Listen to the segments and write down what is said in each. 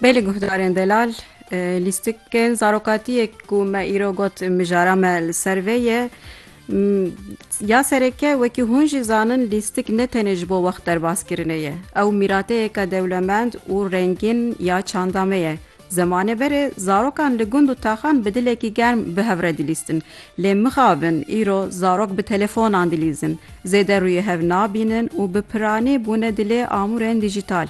Bê li guhdarên delal lîstikên zarokatiyê ku me îro got mijara me li ser vê ye ya sereke wekî hûn jî zanin lîstik ne tenê ji bo wext derbas kirinê ye ew mîrateyeke dewlemend û rengîn ya çanda me ye Zemanê berê zarokan li gund û taxan bi dilekî germ bi hev re dilîstin. Lê mixabin îro zarok bi telefonan dilîzin, zêde rûyê hev nabînin û bi piranî bûne dilê amûrên dîjîtal.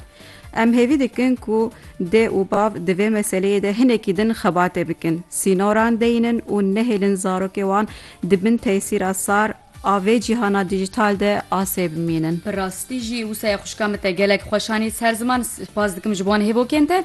Em hêvî dikin ku dê û bav di vê meseleyê de hinekî din xebatê bikin, sînoran deyînin û nehêlin zarokê wan di bin tesîra sar, A vê cîhana dîjîtal de asê bimînin. Bi rastî jî wisa ye xwişka min te gelek xweş anî ser ziman spas dikim ji wan hêvokên te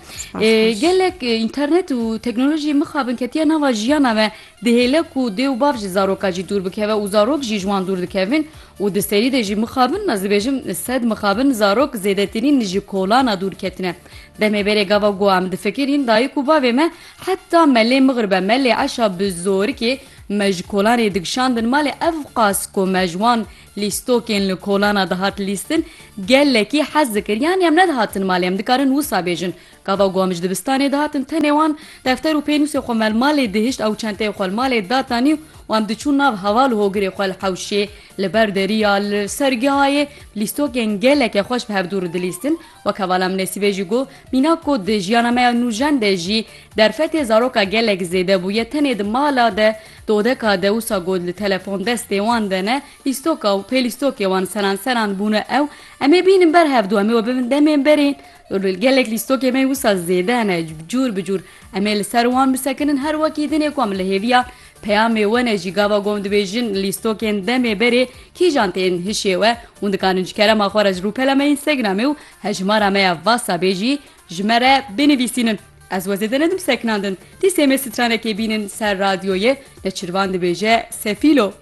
gelek înternet û teknolojî mixabin ketiye nava jiyana me dihêle ku dê û bav ji zaroka jî dûr bikeve û zarok jî ji wan dûr dikevin û di serî de jî mixabin ez dibêjim sed mixabin zarok zêdetirîn ji kolana dûr ketine demê berê gava goa em difikirîn dayik û bavê me heta me lê mixribe me lê eşa bi zorikê Me ji kolanê digişandin malê ev qas ku me ji wan lîstokên li kolana dihat lîstin gelekî hez dikir yanî em nedihatin malê em dikarin wisa bêjin gava ku em ji dibistanê dihatin tenê wan defter û pênûsê xwe me li malê dihişt ew çenteyê xwe li malê datanî û em diçûn nav heval û hogirê xwe li hewşê li ber derî ya li ser gihayê lîstokên geleke xweş bi hevdû re dilîstin Wek hevala min Nesîbê jî got, Mînak ku di jiyana me ya nûjen de jî derfetê zaroka gelek zêde bûye tenê di mala de, di odeka de wisa got li telefon destê wan de ne, lîstoka û pê lîstokê wan seran seran bûne ew em ê bînin ber hev du em ê we bibin demên berîn li gelek lîstokê me yî wisa zêde ne cur bi cur em ê li ser wan bisekinin her wekî din ê ku em li hêviya Peyamê wenê jî gava gom dibêjin lîstokên demê berê kîjan tên hişê we, hûn dikanin ji kerema xwe re ji rûpela me Instagramê û hejmara me ya Whatsappê jî ji me re binivîsînin. Ez we zêde nedim sekinandin. Dîsê me stranekê bînin ser radyoyê, neçirvan dibêje Sefîlo.